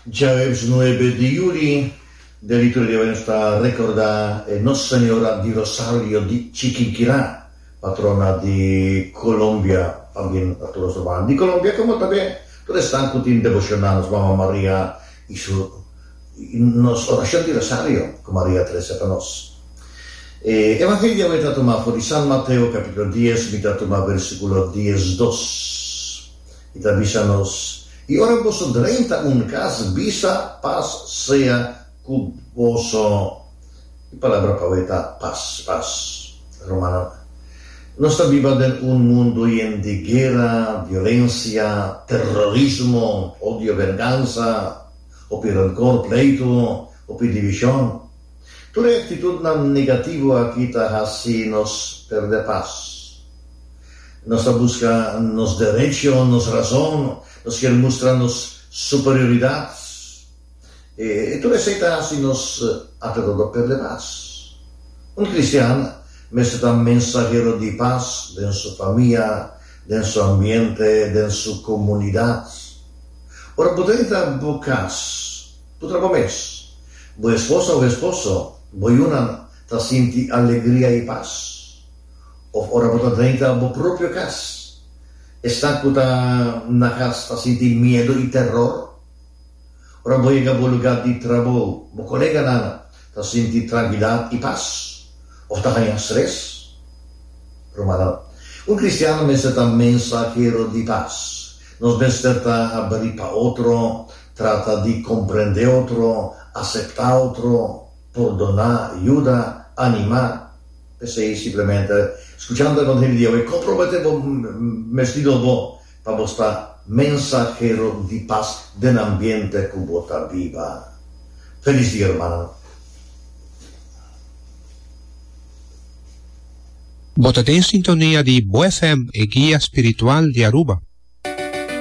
Djaweps nuebe di yuli, den di tur djaweps nos ta rekordá e Nos Señora di Rosario di Chiquinquirá, patrona di Colombia, también pa tur nos Hermananan di Colombia como también tur esnan cu tin devoción na nos Mama Maria y su nos oración di Rosario cu Maria a trece pa nos. E Evangelio di awe ta tuma for di San Mateo capítulo dies, mi ta tuma versículo diesdos. I ta bisa nos, I ora boso drenta un kas, bisa, Pas sea ku boso. E palabra pau ei ta pas, pas. Rumannan, nos ta biba den un mundu yen di guera, violensia, terrorismo, odio, vengansa, hopi renkor, pleitu, hopi divishon. Tur e aktitutnan negativo aki ta hasi nos pèrdè pas. Nos ta buska nos derecho, nos razon, nos kier mustra nos superioridat. E tur esei ta hasi nos alredodó pèrdè pas. Un kristian mester ta mensahero di pas den su famia, den su ambiente, den su komunidat. Ora bo ta entra bo kas. Bo ta kome es. Bo esposa o esposo, bo yunan, ta sinti alegria i pas. Òf ora bo ta drenta bo propio kas, esnan ku ta na kas ta sinti miedu i teror. Ora bo yega bo lugá di trabou, bo koleganan ta sinti trankidat i pas òf ta haña stres? Rumannan, un kristiano mester ta mensahero di pas. Nos mester ta habrí pa otro Trata di komprendé otro, aseptá otro, pordoná, yuda, animá. P'esei simplemente skuchando algun hende di awe, komprometé bo mes di nobo pa bo sta mensahero di pas den ambiente ku bo ta biba. Felis dia hermano. Bo ta den sintonia di Bo FM, e guia spiritual di Aruba.